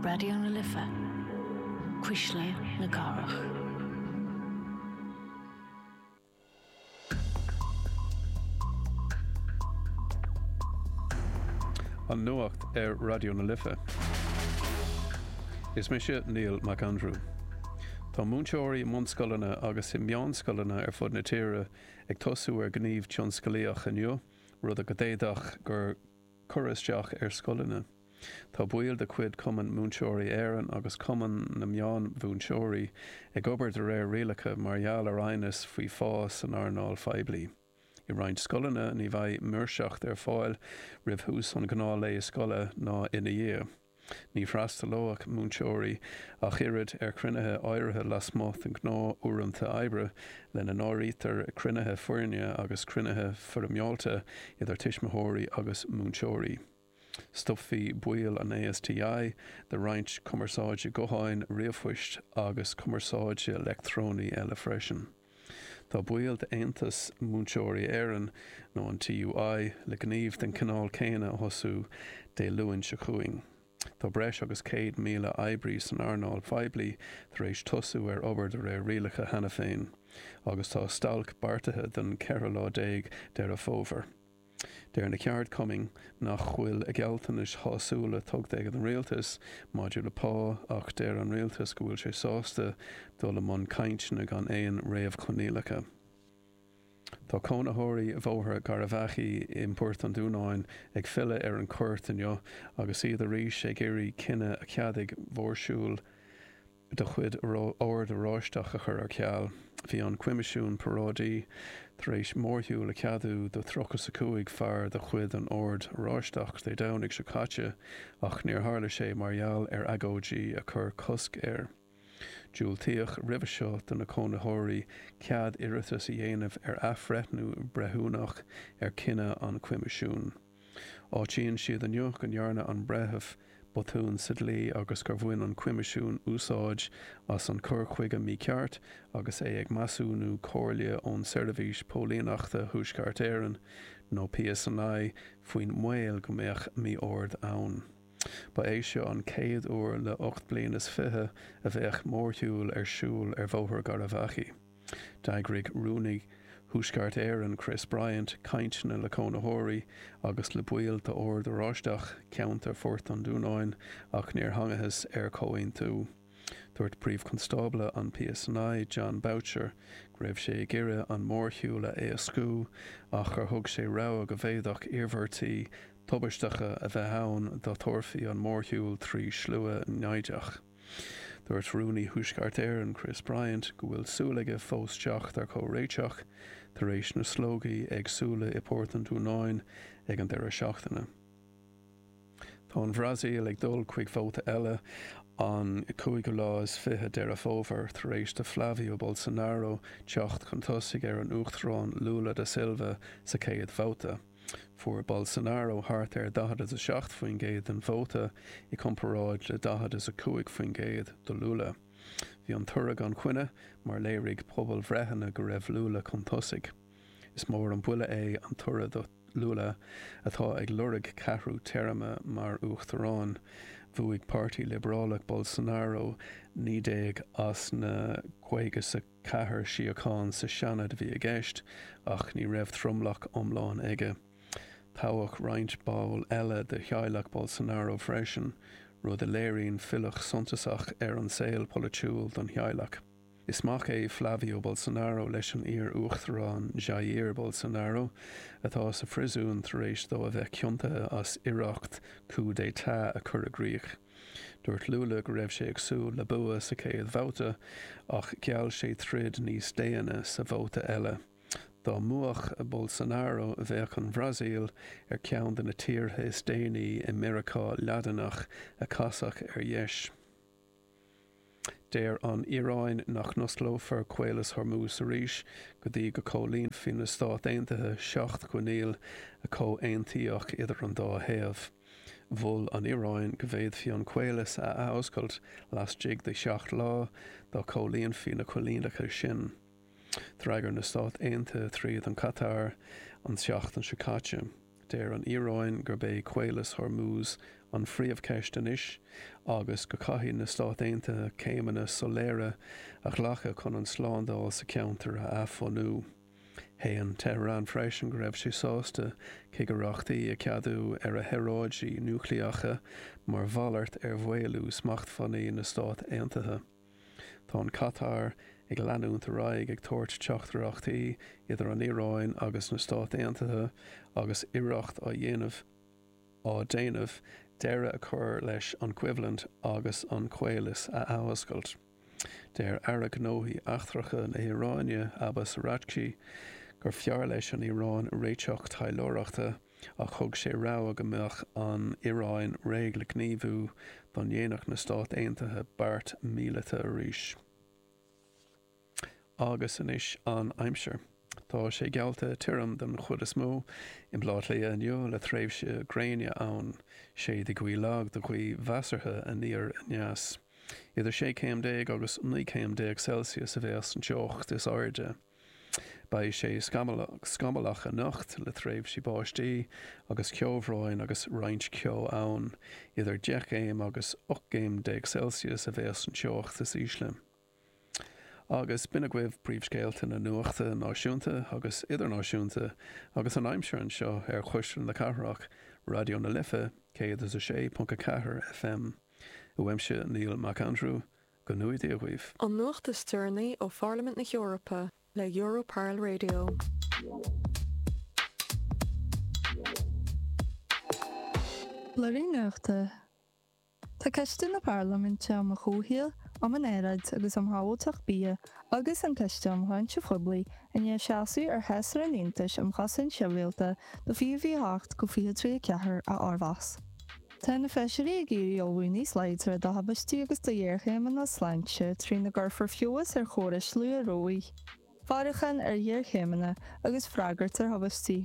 Raidió na Life, Cuisle na Cathrach. An Nuacht ar Raidió na Life. Is mise Niall Mac Andrew. Tá múinteoirí i mbunscoileanna agus i meánscoileanna ar fud na tíre ag tosú ar ghníomh tionsclaíoch inniu, rud a d'fhéadfadh cur. cur isteach ar scoileanna. Tá baill de chuid Chumann Múinteoirí Éireann agus Cumann na Meánmhúinteoirí ag obair de réir rialacha mar gheall ar aighneas faoi phá san earnáil phoiblí. I roinnt scoileanna ní bheidh maoirseacht ar fáil roimh thús an ghnáth-lae scoile ná ina dhiaidh. Ní bhfreastalóidh múinteoirí ach oiread ar chruinnithe áirithe lasmuigh de ghnáthuaireanta oibre, lena n-áirítear cruinnithe foirne agus cruinnithe foirmeálta idir tuismitheoirí agus múinteoirí. Stopfaidh baill an ASTI de roinnt cumarsáide gutháin, ríomhphoist agus cumarsáide leictreonaí eile freisin. Tá baill d'Aontas Múinteoirí Éireann, nó an TUI, le gníomh den chineál céanna a thosú Dé Luain seo chugainn. Tá breis agus 100,000 oibrí san earnáil phoiblí tar éis tosú ar obair de réir rialacha cheana féin, agus tá stailc beartaithe don 14 lá Deireadh Fómhair. Deir na ceardchumainn nach bhfuil gealltanais shásúla tughta ag an Rialtas maidir le pá ach deir an Rialtas go bhfuil sé sásta dul i mbun cainteanna gan aon réamhchoinníollacha. Tá cónaitheoirí Bhóthar Gharbhachaidh i mPort an Dúnáin ag filleadh ar an chúirt inniu agus iad arís ag iarraidh cinneadh a cheadaigh mórshiúl. de chuid an Oird Oráistigh a chur ar ceal. Bhí an Coimisiún Paráidí tar éis mórshiúl a cheadú do tríocha is a cúig fear de chuid an Oird Oráistigh Dé Domhnaigh seo caite ach níor tharla sé mar gheall ar agóidí a chuir cosc air. Diúltaíodh roimhe seo do na cónaitheoirí cead iarratas a dhéanamh ar athbhreithniú breithiúnach ar chinneadh an Choimisiúin. Áitíonn siad inniu go ndearna an breitheamh botún sa dlí agus gur bhain an Coimisiún úsáid as an cur chuige mícheart agus é ag measúnú comhairle ó Sheirbhís Póilíneachta Thuaisceart Éireann, nó PSNI, faoin mbaol go mbeadh mí-ord ann. Ba é seo an chéad uair le ocht bliain is fiche a bheadh mórshiúl ar siúl ar Bhóthar Gharbhachaidh. D'eagraigh Rúnaí Thuaisceart Éireann Chris Bryant cainteanna le cónaitheoirí agus le baill d'Ord Oráisteach Cheantar Phort an Dúnáin ach níor thángthas ar chomhaontú. Dúirt Príomh-Chonstábla an PSNI, Jon Boutcher, go raibh sé ag iarraidh an mórshiúl a éascú ach gur thug sé rabhadh go bhféadfadh iarmhairtí tubaisteacha a bheith ann dá dtabharfaí an mórshiúl trí shlua naimhdeach. Dúirt Rúnaí Thuaisceart Éireann Chris Bryant go bhfuil súil aige fós teacht ar chomhréiteach tar éis na slógaí éagsúla i bPort an Dúnáin ag an deireadh seachtaine. Tá an Bhrasaíl ag dul chuig vóta eile an cúigiú lá is fiche Deireadh Fómhair tar éis do Flavio Bolsonaro teacht chun tosaigh ar an Uachtarán Lula da Silva sa chéad bhabhta. Fuair Bolsonaro thart ar 40 is 7% den vóta i gcomparáid le 40 is 5% do Lula. Bhí an toradh gan choinne mar léirigh pobalbhreitheanna go raibh Lula chun tosaigh. Is mór an buille é an toradh do Lula atá ag lorg ceathrú téarma mar uachtarán. Bhuaigh Páirtí Liobrálach Bolsonaro 19 as na 50 is a Ceathair shuíochán sa Seanad a bhí i gceist ach ní raibh tromlach iomlán aige. Toghadh roinnt ball eile de theaghlach Bolsonaro freisin, rud a léiríonn filleadh suntasach ar an saol polaitiúil don theaghlach. Is mac é Flavio Bolsonaro leis an iar-uachtarán Jair Bolsonaro, atá sa phriosún tar éis dó a bheith ciontaithe as iarracht coup d'état a chur i gcrích. Dúirt Lula go raibh sé ag súil le bua sa chéad bhabhta ach gheall sé troid níos déine sa vóta eile. Dá mbuafadh Bolsonaro bheadh an Bhrasaíl ar cheann de na tíortha is déanaí i Meiriceá Laidineach a chasfadh ar dheis. Deir an Iaráin nach n-osclófar Caolas Hormuz arís go dtí go gcomhlíonfaidh na Stáit Aontaithe seacht gcoinníoll a comhaontaíodh idir an dá thaobh. Mhol an Iaráin go bhféadfaí an caolas a athoscailt lastigh de sheacht lá dá gcomhlíonfaí na coinníollacha sin. D'fhreagair na Stáit Aontaithe trí Chatar an tseachtain seo caite. Deir an Iaráin gurb é Caolas Hormuz an phríomhcheist anois agus go caithfidh na Stáit Aontaithe céimeanna soiléire a ghlacadh chun an tslándáil sa cheantar a athbhunú. Shéan Tehran freisin go raibh sé sásta cigireachtaí a cheadú ar a shaoráidí núicléacha mar mhalairt ar mhaolú smachtbhannaí na Stát Aontaithe. Tá an Catar ag leanúint ar aghaidh ag tabhairt teachtaireachtaí idir an Iaráin agus na Stáit Aontaithe agus iarracht á dhéanamh á déanamh deireadh a chur leis an gcoimhlint agus an caolas a athoscailt. Deir Aire Gnóthaí Eachtracha na hIaráine, Abbas Araghchi, gur fearr leis an Iaráin réiteach taidhleoireachta, ach thug sé rabhadh go mbeadh an Iaráin réidh le gníomhú dá ndéanfadh na Stáit Aontaithe beart míleata arís. Agus anois an aimsir. Tá sé geallta tirim den chuid is mó i mBleá Cliath inniu le tréimhsí gréine ann. Séidfidh gaoth lag go gaoth mheasartha aniar aneas. Idir 16 céim agus 19 céim Celsius a bheas an teocht is airde. Beidh sé scamallach anocht le tréimhsí báistí agus ceobhráin agus roinnt ceo ann. Idir 10 gcéim agus 18 gcéim Celsius a bheas an teocht is ísle. Agus b'in agaibh príomhscéalta na nuachta náisiúnta agus idirnáisiúnta agus an aimsir anseo ar Chuisle na Cathrach, Raidió na Life 106.4 FM. Uaimse Niall Mac Aindriú, Go mbeannaí Dia dhaoibh! An nuacht is deireanaí ó Pharlaimint na hEorpa le Europarl Radio. Blúiríní Nuachta Tá Coiste na Parlaiminte um an Chomhshaol, um an Aeráid agus um Shábháilteacht Bia agus an Coiste um Shláinte Phoiblí i ndiaidh seasamh ar Shásra an Aontais um Chosaint Shibhialta do 2028-2034 a fhormheas. Tá na Feisirí ag iarraidh ullmhú níos láidre do thubaistí agus do ghéarchéimeanna sláinte trína gcuirfear feabhas ar chórais luathrabhaidh, faireachán ar ghéarchéimeanna agus freagairt ar thubaistí.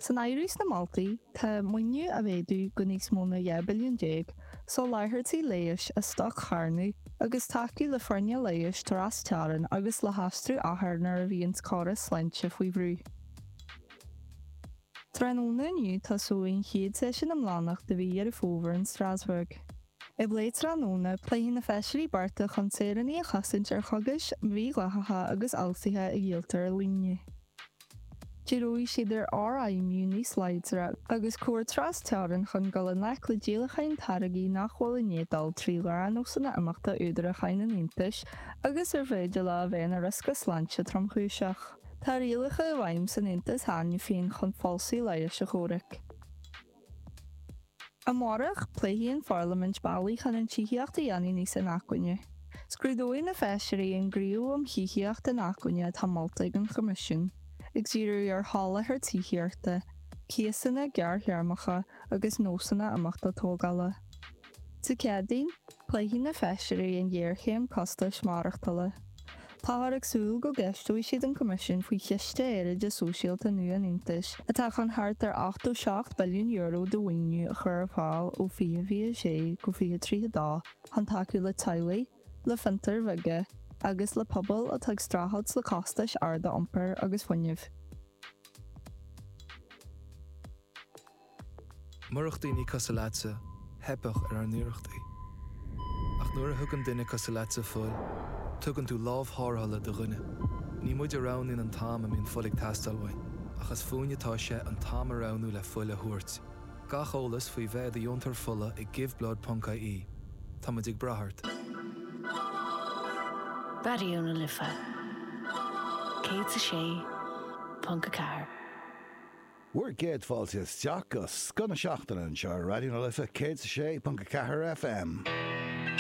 San áireamh sna moltaí tá, maoiniú a mhéadú go níos mó ná 12 billiún, soláthairtí leighis a stoc-charnadh agus tacú le foirne leighis trasteorann agus le haistriú othar nuair a bhíonns córais sláinte faoi bhrú. Tráthnóna inniu tosóidh an chéad seisiún iomlánach de mhí Dheireadh Fómhair in Strasbourg. I bplé tráthnóna, pléifidh na feisirí bearta chun saoránaigh a chosaint ar chogais mhídhleathacha agus fhalsaithe a dhíoltar ar líne. Díreoidh siad ar fhorfheidhmiú níos láidre agus comhar trasteorann chun dul i ngleic le díolacháin táirgí nach bhfuil ina ndáil trí ghnáthnósanna imeachta údarúcháin an Aontais agus ar féidir leo a bheith ina riosca sláinte tromchúiseach. Tá rialacha i bhfeidhm san Aontas cheana féin chun falsú leighis a chomhrac. Amárach, pléifidh an Pharlaimint bealaí chun an tithíocht a dhéanamh níos inacmhainne. Scrúdóidh na feisirí an gníomh um thithíocht inacmhainne atá molta ag an Choimisiún, ag díriú ar sholáthar tithíochta, cíosanna gearrthéarmacha agus nósanna imeachta tógála. Dé Céadaoin, Pléifidh na feisirí an ghéarchéim costais maireachtála. Táthar ag súil go gceisteoidh siad an Coimisiún faoi Chiste Aeráide Sóisialta nua an Aontais atá chun thart ar €87 billiún de mhaoiniú a chur ar fáil ó 2026 go 2032 chun tacú le teaghlaigh, le fiontair bheaga agus le pobail atá ag streachailt le costais arda iompair agus fuinnimh. Murach daoine cosúil leatsa, theipfeadh ar ár n-iarrachtaí. Ach nuair a thugann duine cosúil leatsa fuil, tugann tú lámh thárrthala do dhuine. Ní muid a roghnaíonn an t-am a mbíonn fuil ag teastáil uainn, ach is fúinne atá sé an t-am a roghnú le fuil a thabhairt. Gach eolas faoi bheith i do dheontóir fola ag giveblood.ie. Tá muid ag brath ort. Raidió na Life 106.4. Bhur gcéad fáilte isteach go Scoth na Seachtaine anseo ar Raidió na Life 106.4 FM.